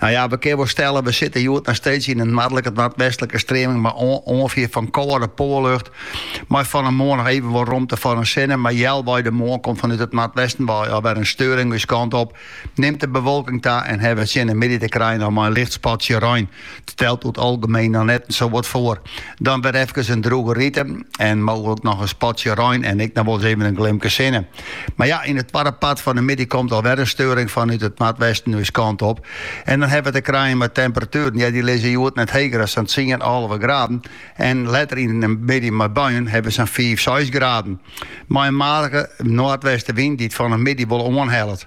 Nou ja, we kinne wol stellen, we sitte hjoed nei steeds yn in noardlike ta noardwestlike streaming mei oanfier fan kâlde poarlucht, mei fan 'e moarn noch even wol romte foar de sinne, mar healwei de moarn komt fanút it noardwesten wei al wer in steuring ús kant op, nimt de bewolking ta en hawwe we tsjin 'e middei te krijen noch mei in licht spatsje rein. Stelt oer it algemeen dan net sawat foar. Dan wer efkes in drûge rite en mooglik noch in spatsje rein en ek noch wol ris even in glimke sinne. Mar ja, yn it twadde part fan 'e middei komt al wer in steuring fanút it noardwesten ús kant op. En dan hawwe we te krijen mei temperatueren, ja, dy lizze hjoed net heger as sa'n tsien, alve graden. En letter yn 'e middei mei buien hawwe we sa'n fiif, seis graden. Mei in matige noardwestenwyn dy't fan 'e middei wol oanhellet.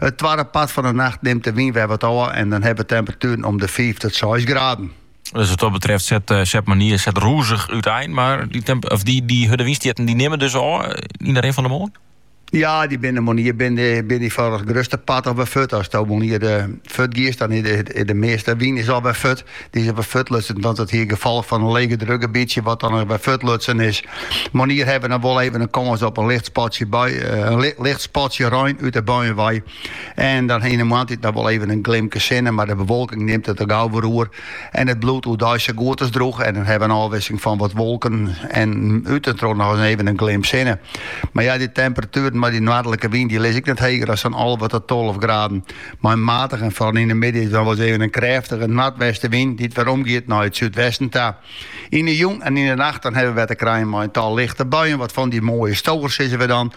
It twadde part fan de nacht nimt de wyn wer wat ôf en dan hawwe we temperatueren om de fiif tot seis graden. Dus wat dat betreft set, eh, set moarnier set rûzich uitein. Mar dy, temp of dy, dy hurde wynstjitten dy nimme dus ôf eh, yn de rin fan de moarn? Ja, dy binne moarnier binne dy foar it grutste part al wer fuort. Ast moarnier eh, fuort giest, dan is de, de measte wyn is al wer fuort. Dy is wer fuortlutsen, want it is it gefolch fan in legedrukgebietsje wat dan wer fuortlutsen is. Moarnier hawwe we dan wol even in kâns op in licht spatsje bui, in li, licht spatsje rein út de buien wei. En dan yn de moarntiid dan wol even in glimke sinne, mar de bewolking nimt it der gau wer oer. En it bliuwt oerdeis sa goed as drûch en dan hawwe we in ôfwisseling fan wat wolken en út en troch noch even in glim sinne. Mar ja, dy temperatueren mei dy noardlike wyn, dy lizze ek net heger as sa'n alve ta tolve graden. Mei in matige en foaral yn de middei dan wol ris even in krêftige noardwestenwyn dy't wer omgiet nei it súdwesten ta. Yn de jûn en yn de nacht dan hawwe wy wer te krijen mei in tal lichte buien, wat fan dy moaie stowers sizze wy dan.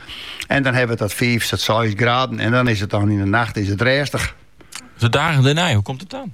En dan hawwe wy dan fiif ta seis graden en dan is it dan yn de nacht is it rêstich. De dagen dêrnei, hoe komt it dan?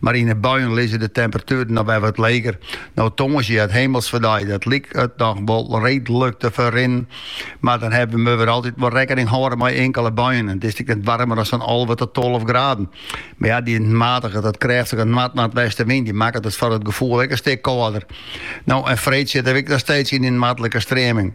Mar yn 'e buien lizze de temperatueren noch wer wat leger. No tongersdei Himelfeartsdei, dan liket it noch wol reedlik te ferrinnen, mar dan hawwe we wer altyd wol rekkening hâlde mei inkele buien. It is ek net waarmer as sa'n alve ta tolve graden. Mar ja, dy matige ta krêftige noard-noardwestenwyn dy makket it foar it gefoel ek in stik kâlder. No en freed sitte we ek noch steeds yn dy noardlike streaming.